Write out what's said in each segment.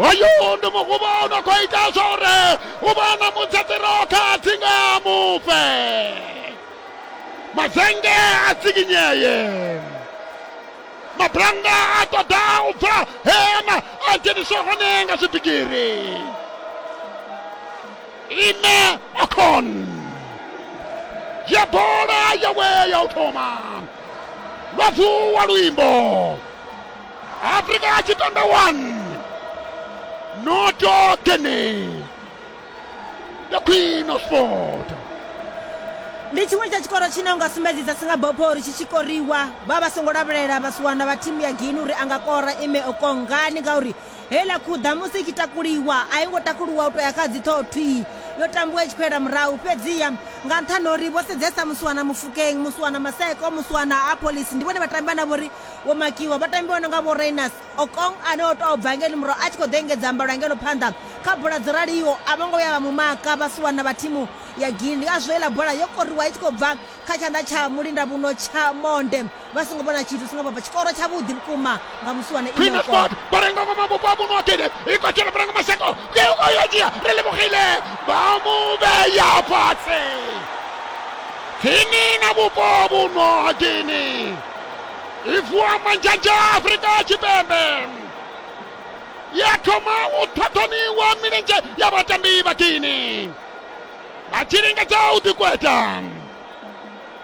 hoyu ndi muguvha u no khou ita zwa uri u vha na mutsatsiro kha dzinga mufe mazenge a tsikinyeye mabulanga a ṱoḓa u bva hema a dzheniswa hone nga zwibigiri Ime Okon. Yebola yawe ya utoma. Lwavu wa luimbo. Afrika ya Chitanda 1. Noto Guinea. The Queen of Sport. ndi tshiṅwe tsha tshikoro tshine unga sumbedzisa singapore uri tshi tshi koriwa vha vha songo lavhelela vhasiwana vha thimu ya gini uri a nga kora ime okongani ngauri Heiḽa khuḓa musi i tshi takuliwa, a i ngo takuliwa u tou ya kha dziṱhoho thwii. Yo tambiwa i tshi khou yela murahu. Fhedziha, nga nṱhani ha uri vho sedzesa Musiwana Mofokeng, Musiwana Maseko, Musiwana Appollis, ndi vhone vhatambi vhane vha vho ri vho makiwa, vhatambi vho no nga vho Rayners Okong ane o tou bva ngeno murahu a tshi khou ḓo engedza mbalo ngeno phanḓa kha bola dzo raliho, a vho ngo vhuya vha mu maka Vhasiwana vha thimu ya Guinea. Ngazwo heiḽa bola yo koriwa i tshi khou bva kha tshanḓa tsha mulindavhuno tsha monde vha songo vhona tshithu singa baba tshikoro tshavhuḓi vhukuma nga musiwana inokot barenga ngoma vhupo ha muno akede ikotshela barenga maseko keuko yo dzhia ri lemogile vha mu vheya fhasi khini na vhupo ha vhuno ha gini i vuwa manzhanzha afrika tshipembe ya thoma u ṱhaṱhoniwa milenzhe ya vhatambi vha gini a tshi lingedza u ḓikweta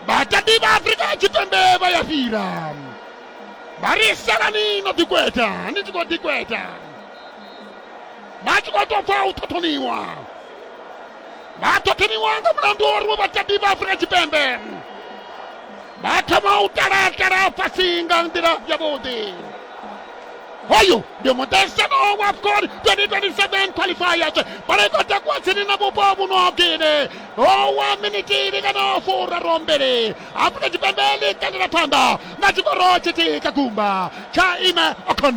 vhatambi vha afurika tshipembe vha ya fhira vha ri salani no ḓikweta ni tshi khou ḓikweta vha tshi khou tou pfa u ṱhoṱhoniwa vha ṱhoṱhoniwa nga mulandu wa uri vhatambi vha afurika tshipembe vha thoma u talatala fhasi nga nḓila yavhuḓi hoyu ndi muṱahisano wa afcon 2027 qualifiers bola i khou takuwa tsini na vhupo vhuno gine owa miniti ili kana furaru mbili afrika tshipembe ḽi kandela phanḓa na tshikoro tshithihi tsha gumba tsha ime ocon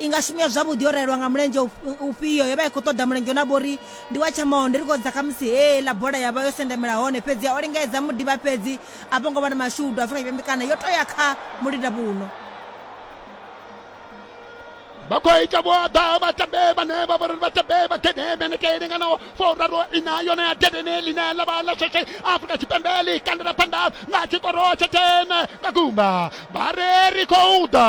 i nga shumiwa zwavhuḓi yo rayelwa nga mulenzhe ufhio yo vha i khou ṱoḓa mulenzhe na vhori ndi wa tshamaho ndi ri khou dza khamusi hee ḽa bola ya vha yo sendamela hone fhedzi o lingedza mudiba fhedzi a vho ngo vha na mashudu afrika tshipembe kana yo to ya kha mulinda vhuno vha khou ita vho ḓa vhatambe vhane vha vhori vhatambe vha gede meneke linganaho furaru ina yone ya gedene line ḽa vha ḽa sheshe afrika tshipembe ḽi kandela phanḓa nga tshikoro tsha tene nga gumba vha re ri khou ḓa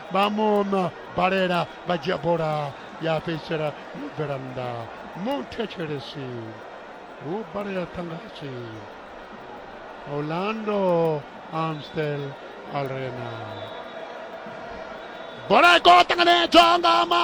vha mu balela vha dzhia bola ya fhedzisela yo bvela nnḓa muthetshelesi hu balela ṱangasi orlando amstel arena bola i khou ṱanganedzwa nga ma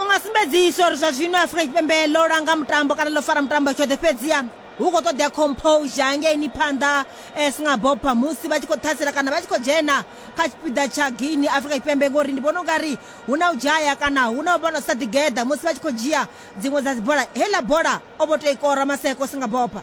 u nga sumbedzisa uri zwa zwino afurika tshipembe ḽo langa mutambo kana ḽo fara mutambo tshoṱhe fhedziha hu khou ṱoḓea composure hangeini phanḓa eh, singabopha musi vha tshi khou ṱhasela kana vha tshi khou dzhena kha tshipiḓa tsha guini afrika tshipembe ngori ndi vhona u nga ri hu na u dzhaya kana hu na u vhona sa ḓigeḓa musi vha tshi khou dzhia dziṅwe dza dzibola heiḽa bola o vho tou i kora maseko singabopha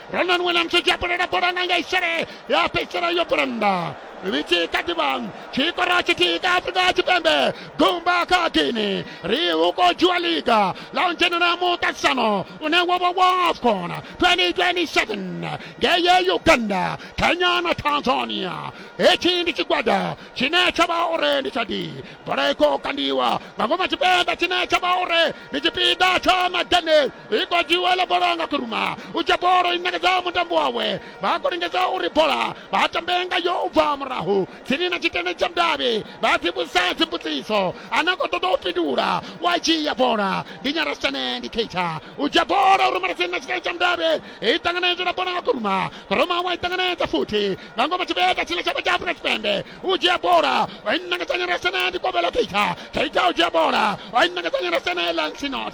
Brandon Williams u dzhia bola na bola nga nga isele ya fhedzisela yo bulanda ri tshi kha ḓi vha tshikoro tshithihi kha afrika tshipembe gumba kha guini ri hu khou dzhiwa liga ḽa u dzhenela muṱaṱisano une wo vha wa afcon 2027 ngeye uganda kenya na tanzania hetshi ndi tshigwada tshine tsha vha uri ndi tsha di bola i khou kandiwa nga ngoma tshipembe tshine tsha vha uri ndi tshipiḓa tsha madanel iko dziwela bola nga kuruma u tsha bolo i nekedza mutambo wawe vha khou lingedza uri bola vha tambe nga yo u bva murahu tsini na tshitende tsha mudavhi vha dzivhusa dzimbudziso ana khou ṱoḓa u fhindula wa dzhia bola ndi nyarasitshane ndi keitsha u dzhia bola u rumela tsini na tshitende tsha mudavhi i ṱanganedzwa na bola nga kuruma kuruma wa i ṱanganedza futhi nga ngoma tshivheta tshine tshavha tsha afrika tshipembe u dzhia bola wa i nekedza nyarasitshane ndi kovhelo keitsha keitsha u dzhia bola wa i nekedza nyarasitshane lansinot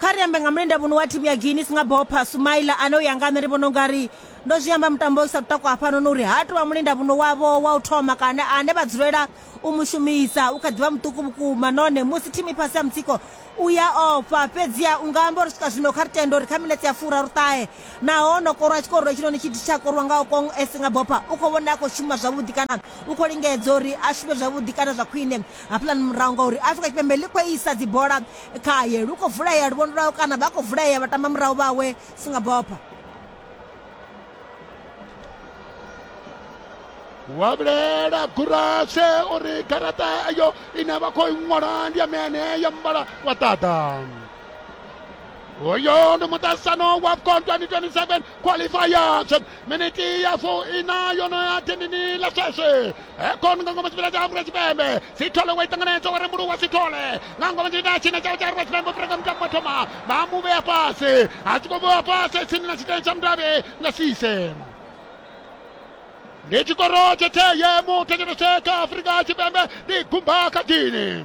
kha ri ambe nga mulenda muno wa thimu ya guinness nga bopha sumaila ane u ya nga nṋe ndi vhona u nga ri ndo zwi amba mutambo u sa takwa hafhanoni uri ha tou vha mulenda muno wavho wa u thoma kana ane vha dzulela u mu shumisa u kha ḓivha muṱuku vhukuma nahone musi thimu i fhasi ya mutsiko u ya ofha fhedziha u nga amba uri swika zwino kha ri tende uri kha minetse ya fura ri ṱahe naho no korwa tshikorolo tshinoni tshi tsha korwa nga okong e si nga bopha u khou vhona a khou shuma zwavhuḓi kana u khou lingedza uri a shume zwavhuḓi kana zwa khwine hafhaḽani murahu ngauri afrika tshipembe ḽi khou isa dzibola khaye lu khou vulea luvhondo lwawe kana vha khou vulea vhatamba murahu vhawe singabopha wa vhulela gurashe uri garaṱa eyo ine vha khou i ṅwala ndi ya mene ya muvhala wa ṱaḓa uyo ndi muṱasano wa afcon 2027 qualifiers miniti ya fu ina yono ya tendini la sweswi ekon nga ngoma chipila cha afrika chipembe sithole wa itanganetso wa rembulu wa sithole nga ngoma chipila china chao cha afrika chipembe freka mtambo wa thoma ba mu vhea fhasi a tshi khou vhewa fhasi tsini na tshiteni tsha mudavhi nga sise ndi tshikoro tshe theye mu thetshelese kha afrika tshipembe ndi gumba kha dini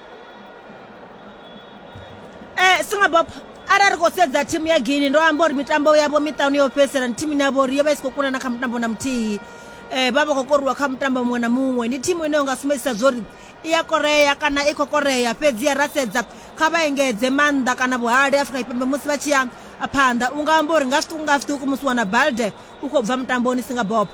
eh singabop arali khou sedza thimu ya guini ndo amba uri mitambo yavho miṱanu yo fhedzisela ndi thimu ine yavho uri yo vha i si khou kunana kha mutambo na muthihi um vha vha khou koriwa kha mutambo muṅwe na muṅwe ndi thimu ine yo nga sumbedzisa zwo uri i ya korea kana i khou korea fhedzi ya ra sedza kha vha engedze maanḓa kana vhuhali afrika tshipembe musi vha tshi ya phanḓa u nga amba uri nga zwiṱuku nga zwiṱuku musi wana balde u khou bva mutamboni singabopo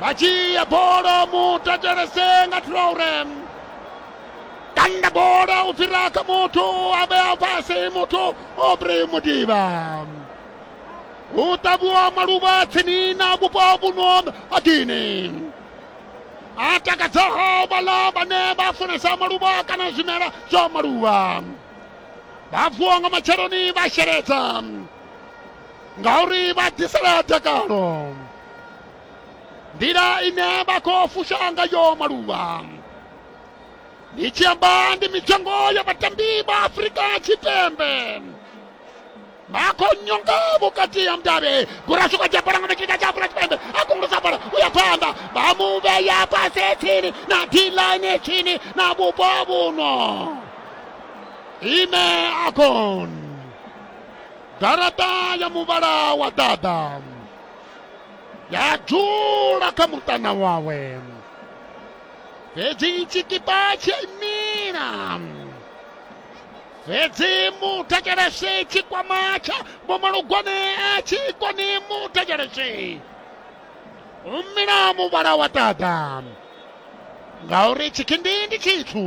vha dzhia bola mutatalese nga traure tanda bola u fhira kha muthu a vhea fhasi muthu obri mudiba hu ṱavhiwa maluvha tsini na vhupo vhuno ha gini a takadzaho vhala vhane vha funesa maluvha kana zwimela zwa maluvha vha vuwa nga matsheloni vha sheledza ngauri vha ḓisela dakalo nḓila ine vha khou fusha ngayo maluvha ndi tshi amba ndi mitengo ya vhatambi vha afurika tshipembe vha khou nyonga vhukati ha mudavhi gurashuka dzhabalanga na tshika tsha afurika tshipembe a kongolosa bola u ya phanḓa vha mu vhea fhasi tsini na diline tsini na vhupo vhuno ime akon garaṱa ya muvhala wa ḓaḓa ya dzula kha muṱana wawe fhedzi tshikipa tshi imila fhedzi mutakelese tshikwama tsha bomalugwane a tshi koni mutakelese umila muvhala wa ṱaḓa ngauri tshikindi ndi tshithu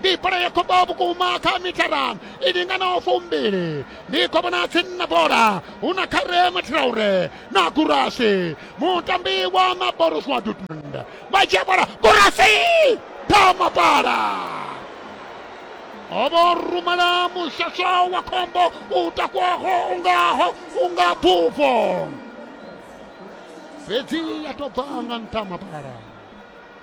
ndi bola ya khombo vhukuma kha mithara i linganaho fumbili ndi khovhona tsini na bola hu na kharema traure na gurasi mutambi wa maboruswa dortmund vha dzhia bola gurasi tama bola ovo rumela mushasha wa khombo u takwaho ungaho unga bufo fhedzi ya tou bva nga nṱha mapara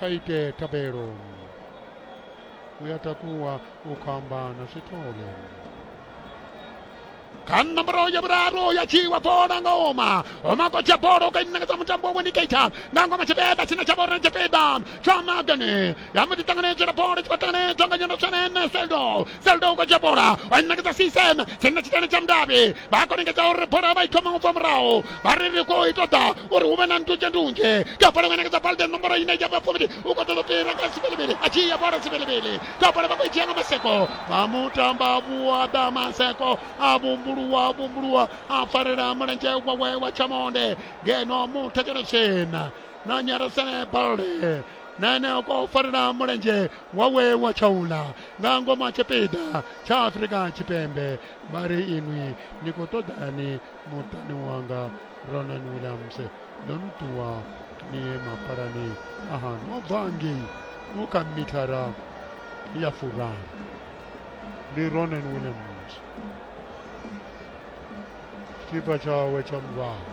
kha ite thabelo u ya takuwa u khou amba na swithole kha nomboro ya vhuraru ya tshiwa bola nga oma oma kotsha bola u kainangedza mutambo wa wendicator nga ngoma tshipiḓa tshine tsha vhori tshipiḓa tsha magane ya mbo ḓi ṱanganedzela bola tshi khou ṱanganedzwa nga nyendo tshenene seldo zelda u khou dzhia bola wa ṋekedza sisem tshenna tshitani tsha mudavhi vha khou lingedza uri bola vha i thoma u bva murahu vha ri ri khou i ṱoḓa uri hu vhe na ndunzhe ndunzhe ka bola wa ṋekedza balde nomboro ine ya vha fuvhili u khou ṱoḓa fhira kha sivilivili a tshi ya bola sivilivili ka bola vha khou i dzhia nga maseko vha mutamba vhuaḓa maseko a vhumbuluwa vhumbuluwa a farela mulenzhe wawe wa tshamonde ngeno muthetshelo tshena na nyarasene balde na ene a khou farela mulenzhe wawe wa tshaula nga ngomu ha tshipiḓa tsha afurika tshipembe vha ri inwi ni khou ṱoḓani muṱani wanga ronan williams ndo ni ṱuwa ni ye mapalani aha no bva ngei no kha mithara ya furaru ndi ronan williams tshipa tshawe tsha muvhala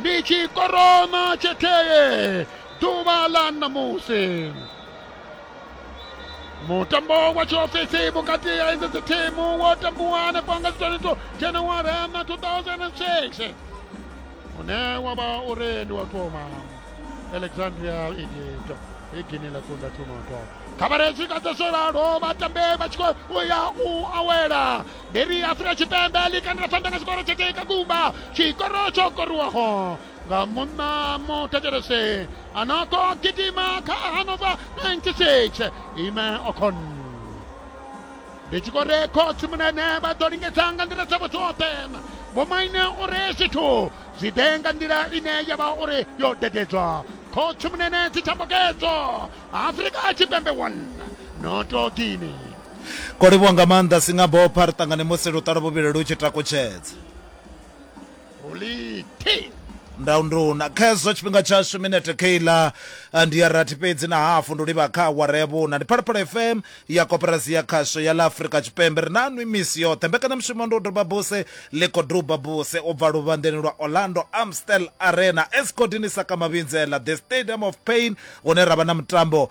ndi chikorona cheteye dzuwa la namusi mutambo wa chiofesi vhukati ya idzo dzi thimu wo tambiwa hanefho nga zwiṱaniso januwari na 2006 une wa vha uri ndi wa thoma alexandria egypt i gini ḽa kunda thunoto khabaretshi ka dza zwo ralo vhatambe vha tshi khou ya u awela ndi ri afurika tshipembe ḽi kandela phanḓa nga tshikoro tsha teka gumba tshikoro tsho koriwaho nga munna muthetshelese a no khou gidima kha hanova 96 ime okon ndi tshi khou re khotsi munene vha ḓo lingedza nga nḓila dzavho dzoṱhe vhomaine uri zwithu zwi ḓe nga nḓila ine ya vha uri yo dededzwa khotsi munene dzitshambokedzo afrika tshipembe 1 noto guinea Kwo livhuwa nga maanḓa Singabopha, ri ṱangane musi luṱalo vhuvhili lu tshi takutshedza. Holite. ndaunduna khezwo tshifhinga tshashu minete keiḽa ndi ya rathi fhedzi na hafu ndi livha kha awara ya vhuna ndi phalaphala fm ya koperasi ya khasho ya ḽa afurika tshipembe ri nanwi misi yoṱhe mbekanyamushumo ndi u doba buse ḽi khou duba buse u bva luvhanḓeni lwa orlando amstel arena escodini sakamavhinzela the stadium of pain hune ra vha na mutambo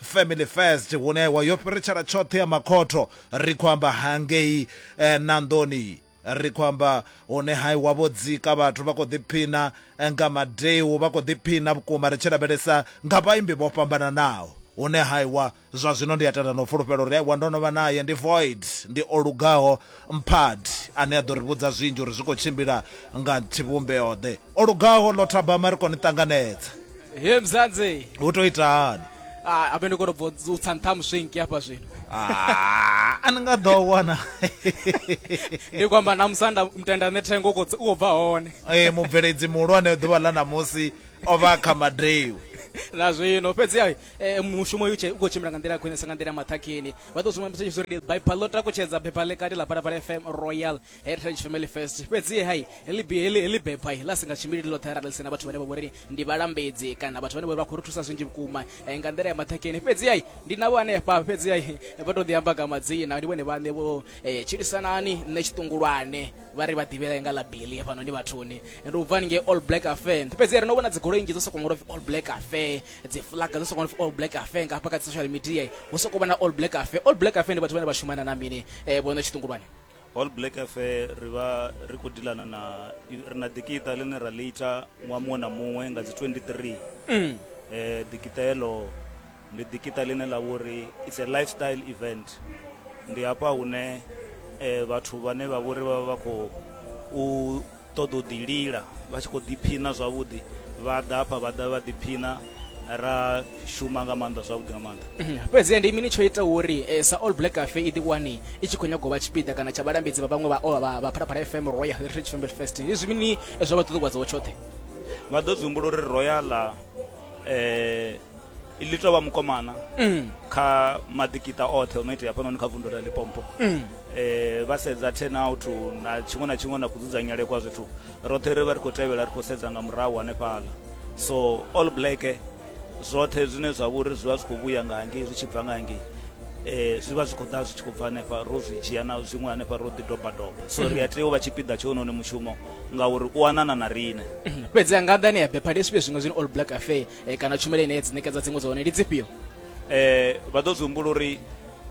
family first hune wa yo fhiritshela tshoṱhe ya makhotho ri khou amba hangei eh, nanḓoni ri khou amba hune hai wa vho dzika vhathu vha khou ḓiphina eh, nga madeu vha khou ḓiphina vhukuma ri tshi lavhelesa nga vhaimbi vho fhambananaho hune haiwa zwa zwino ndi a tenda no fulufhelo uri aiwa ndo no vha naye ndi void ndi o lugaho Mpad, ane a ḓo ri vhudza zwinzhi uri zwi khou tshimbila nga tshivhumbeo-ḓe. O lugaho, ḽo thabama, ri khou ni ṱanganedza. He Mzanzi! Hu tou ita hani? Ah, habe ndi khou tou bvo u tsa nṱha muswinki hafha zwino. Ah, a ni nga ḓo wana. Ndi khou amba na musanda mutenda nṋe thengo u khou tsa- u khou bva hone. Ee, mubveledzi muhulwane ḓuvha ḽa ṋamusi o vha a kha madeu. Na zwino fhedziha eh, mushumo u tshi- u khou tshimbila nga nḓila ya khwinesa nga nḓila ya maṱhakheni. vha ḓo zwi ṅwambisa tshipfi uri bible ḽo takutshedza bepha ḽi kati ḽa phalaphala fm royal heritage family fest fhedzi hai heḽi bi- heḽi heḽi bepha ḽa si nga tshimbili ḽoṱhe arali ḽi sina vhathu vhane vha vhori ndi vhalambedzi kana vhathu vhane vhori vha khou ri thusa zwinzhi vhukuma eh, nga nḓila ya maṱhakheni fhedzi hai ndi navho hanefha fhedzi hai vha tou ḓi amba nga madzina ndi vhone vhaṋe vho eh, tshilisanani nṋe tshiṱungulwane vha ri vha ḓivhela nga ḽa bili fhanoni vhathuni ndi u bva haningei all black affair fhedzi ri no vhona dzigoloi nnzhi dzo sokou ṅwalwa upfi all black affair dzi flag dzo sokou all black affair nga hafha kha dzi social media hu sokou vha na all black affair all black affair ndi vhathu vhane vha shumana na mini eh vhono tshiṱungulwane all black affair ri vha ri khou dilana na ri na dikita ḽine ra ḽi ita ṅwaha muṅwe na muṅwe nga dzi 23 mm. eh dikita heḽo ndi dikita ḽine ḽa vhori it's a lifestyle event ndi hafha hune eh vhathu vhane vha vhori vha vha khou u ṱoḓa u ḓi lila vha tshi khou ḓiphina zwavhuḓi vha ḓa hafha vha ḓa vha ḓiphina ra shuma nga maanḓa zwavhuḓi nga maanḓa mhm. fhedzi ndi mini tsho ita uri eh, sa all black cafe i ḓiwani i tshi khou nyagou vha tshipiḓa kana tsha vhalambedzi vha vhaṅwe vha phalaphala fm royal heritage family fest ndi zwi mini eh, zwa vha ṱuṱuwadzaho tshoṱhe vha ḓo zwi humbula uri royala um eh, ḽi tou vha mukomana mm. kha maḓikita oṱhe o no itea hafhanoni kha vundu la lipompo mm. eh, vha sedza ten out na tshiṅwe na tshiṅwe na kudzudzanyele kwa zwithu roṱhe ri vha ri khou tevhela ri khou sedza nga murahu hanefhala so all black zwoṱhe zwine zwa vhori zwi vha zwi khou vhuya nga hangei zwi tshi bva nga hangei eh zwi vha zwi khou ḓa zwi tshi khou bva hanefha ro zwi dzhia na zwiṅwe hanefha ro ḓi doba doba so ri a tea u vha tshipiḓa tsho noni mushumo ngauri u anana na riṋe fhedzi a nga ḓani ya bepha ndi zwifhio zwiṅwe zwine all black affair e, kana tshumelo ine dzi ṋekedza dziṅwe dza hone ndi dzifhio um vha ḓo zwi humbula uri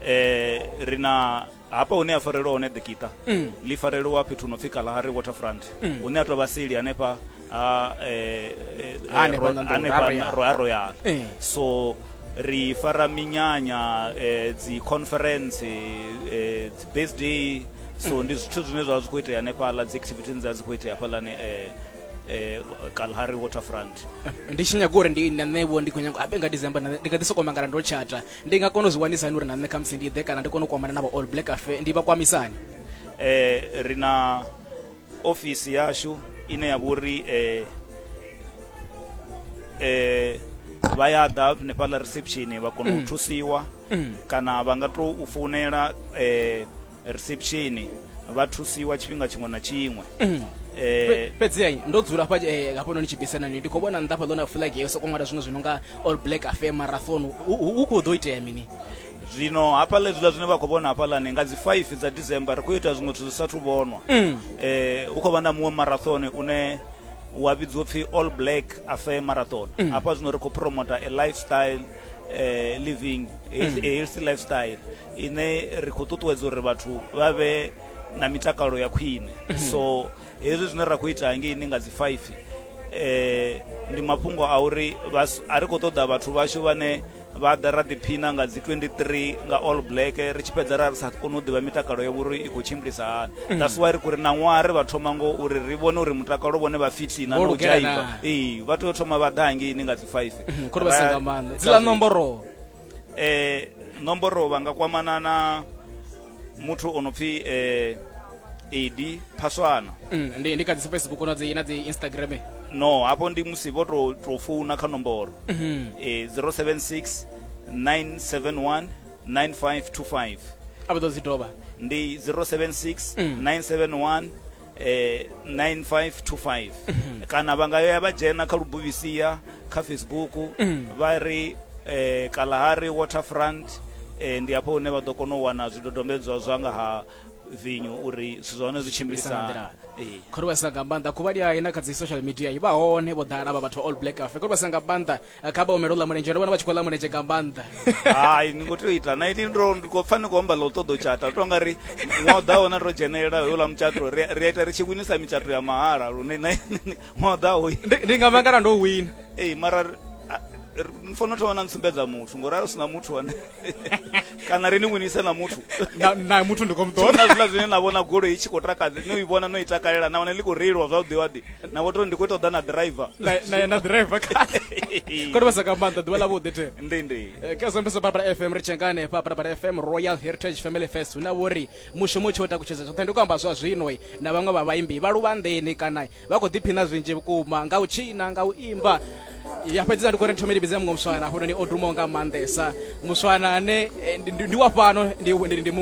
um ri na hapa hune ya farelwa hone ḓikiṱa mm. ḽi farelwa fhethu no pfi kalahari waterfront mm. hune a tou vha seli hanefha ha eh, eh, eh, royal so ri fara minyanya dzi conference dzi birthday so ndi zwithu zwine zwa zwi khou itea hanefhaḽa dzi activityn dza dzi khou itea hafhaḽani um eh, kalhari waterfront ndi tshi nyaga uri ndi na nṋe vho ndi khou nyaga abe nga december na nṋe ndi nga ḓi sokou mangala ndo tshata ndi nga kona u zwi wanisa hani uri na nṋe khamusi ndi ḓe kana ndi kone u kwamana na vha all black afe ndi vha kwamisani eh, ri na ofisi yashu ine ya vhori eh, eh, vha ya ḓa hanefhaḽa reception vha kona u thusiwa kana vha nga tou u founela eh, reception vha thusiwa tshifhinga tshiṅwe na tshiṅwe mm. eh, fhedzi ai ndo dzula hafha eh, hafha noni tshibisana ni ndi khou vhona nnḓa hafha ḽona flag yo sokou ṅwala zwiṅwe zwi no nga all black affair marathon hu khou ḓo itea mini zwino hafha ḽe zwiḽa zwine vha khou vhona hafhaḽani nga dzi 5 dza december ri khou ita zwiṅwe zwithu zwi sathu vhonwa um mm. eh, hu khou vha na muṅwe marathon une wa vhidziwa pfhi all black affair marathon mm. hafha zwino ri khou promota a lifestyle eh, living mm. healthy lifestyle ine ri khou ṱuṱuwedza uri vhathu vha vhe na mitakalo ya khwine mm. so hezwi zwine ra khou ita hangeini nga dzi five eh ndi mafhungo a uri a ri khou ṱoḓa vhathu vhashu vhane vha ḓa ra ḓiphina nga dzi 23 nga all black ri tshi fhedza ra ri sa koni u ḓivha mitakalo ya vhuri i khou tshimbilisa hani mm. that's why ri khou ri na ṅwaha ri vha thoma ngo uri ri vhone uri mutakalo vhone vha fitina na u dzhaiva ee vha tea u thoma vha ḓa hangeini nga dzi 5 mhm, khori vha si nga maanḓa dzila nomboro eh nomboro vha nga kwamana na muthu o no pfi eh edi phaswana mm, ndi ndi kha dzi facebook na dzi na dzi instagram no hapo ndi musi vho to to founa kha nomboro mm -hmm. eh 076 971 9525 abo dzi doba ndi 076 mm. 971 eh 9525 kana vha nga ya vha dzhena kha lubuvisia kha facebook vha ri eh kalahari waterfront eh ndi hafho hune vha ḓo kona u wana zwidodombedzwa zwa nga ha vinyo uri zwithu zwa hone zwi tshimbilisa Tshimbilisa nga nḓila. eh khori vha sina nga maanḓa khuvhali ya ina kha dzi social media i vha hone vho ḓala vha vhathu all black afe khori vha sina nga maanḓa kha vha humele u ḽa mulenzhe ndo vhona vha tshi khou ḽa mulenzhe nga maanḓa hai ni ngo tea u ita na ini ndo ndi khou pfa ni khou amba ḽa u ṱoḓa u tshata to nga ri ṅwaha ḓaho na ro dzhenelela houḽa mutshato ri a ita ri tshi winisa mitshato ya mahala lune na ṅwaha ḓaho ndi nga mangala ndo wina ee mara ni fanela u thoma na ntsumbedza muthu ngori a u sina muthu ane kana ri ni winise na muthu na na muthu ndi khou mu ṱoḓa na zwiḽa zwine na vhona goloi i tshi khou takadza no i vhona no i takalela nahone ḽi khou reiliwa zwavhuḓi waḓi na vho tori ndi khou ṱoḓa na driver na na- na driver kale kodi vha sa ka maanḓa ḓuvha ḽa vhuḓi the ndi ndi Eh, ka zombeso babala fm ri tshia nga hanefha babala fm royal heritage family fest hu na vhori mushumo u tshi o takutshedza zwoṱhe ndi khou amba zwa zwino eh, na vhaṅwe vha vhaimbi vha luvhanḓeni kana vha khou ḓiphina zwinzhi vhukuma nga u tshina nga u imba ya fhedzisa ndi khou ri thome ndi vhidze muṅwe muswana hafhanoni o dumaho nga maanḓesa muswana ane eh, ndi ndi wa fhano ndi- ndi ndi muṅwe